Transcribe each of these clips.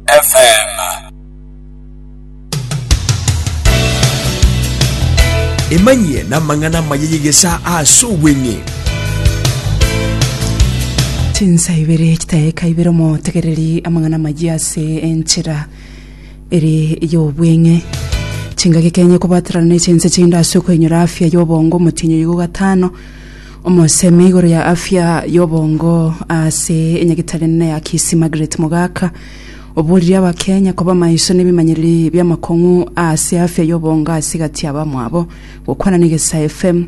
FM. Emanyie namang'ana amaya y'egesaa ase obweng'e. chinsa ibere chitaeka ibere omotegereri amang'ana amaya ase enchera ere y'obweng'e chingaki kenye kobaterana ne chinse chinde ase okoinyora afya y'obongo omotinyo igo gatano Omosemi igoro ya afya y'obongo ase enyagetari enene ya Kisii Margaret Mogaka oborire abakenya koba maiso nebimanyereri biamakong'u ase afya y'obongo ase egati yabamwabo. Gokwana n'Egesae FM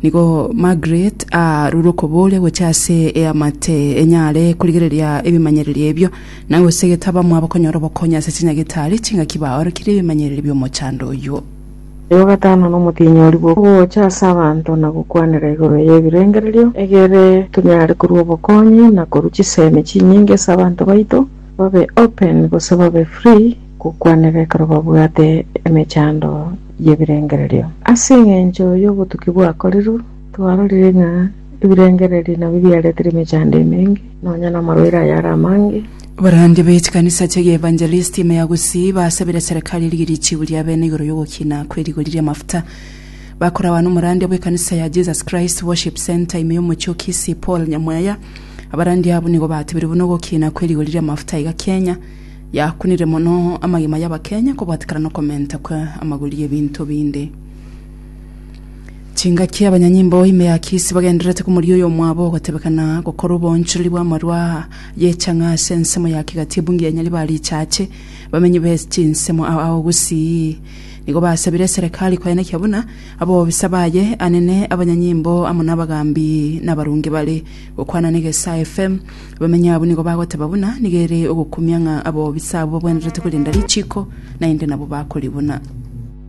nigo Margaret arure okoboria gocha ase eamate enyare korigereria ebimanyereri ebio na gosegeta abamwabo konyora obokonyi ase chinyagetari chingaki baorokirie ebimanyereri bi'omochando oyuo. Oyo o gatano nomotinyori bw'ogocha ase abanto na gokwanera igoro y'ebirengererio, egere tonyare korua obokonyi na korua chisemi chinyinge ase abanto baito, babe open gose babe free gokwanera ekero babwate emechando y'ebirengererio. Ase engencho y'obotuki bwakorirwe, twarorire ng'a ebirengererio nabio biaretire emechando emenge, nonya namarwaire ayare amange. Abarandia be chikanisa chia Gievangelisti ime ya Gusii basabire serikali erigie richibu ria bene igoro y'ogokina kwe rigori ri'amafuta. Bakoragwa n'omorandia bw'ekanisa ya Jesus Christ Worship Centre ime y'omochie o Kisii Paul Nyamwaya. Abarandia abwo nigo batebire buna ogokina kwe rigori ri'amafuta iga Kenya yakunire mono amagima y'Abakenya kobwatikana nokomenta kwa amagori y'ebinto binde. Chingaki abanyanyimbo ime ya Kisii bagendererete komoria oyomwabo ogotebekana gokora oboonchoreri bw'amarwa Yecha ng'a ase ensemo ya kegati ebungi ya Nyaribari ichache, bamenyi be chinsemo ao ao gusii. Nigo basabire eserekari koenekia buna abobisa baye anene, abanyanyimbo amo nabagambi na abarungi bare. Gokwana na Egesae FM, abamenyi abwo nigo bagoteba buna nigo ere ogokumia ng'a abobisa abwo babwenerete korenda richiiko, naende nabo bakoribuna.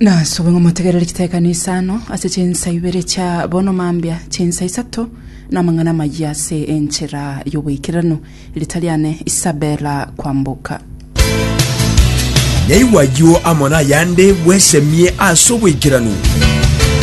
Nasobe ng'a motegerere chitekano isano ase chinsa ibere chia bono mambia, chinsa isato namang'ana amayia ase enchera y'oboikeranu. Riita riane Isabella Kwamboka. Naigwa ayio amo nayande bwesemie ase oboikeranu.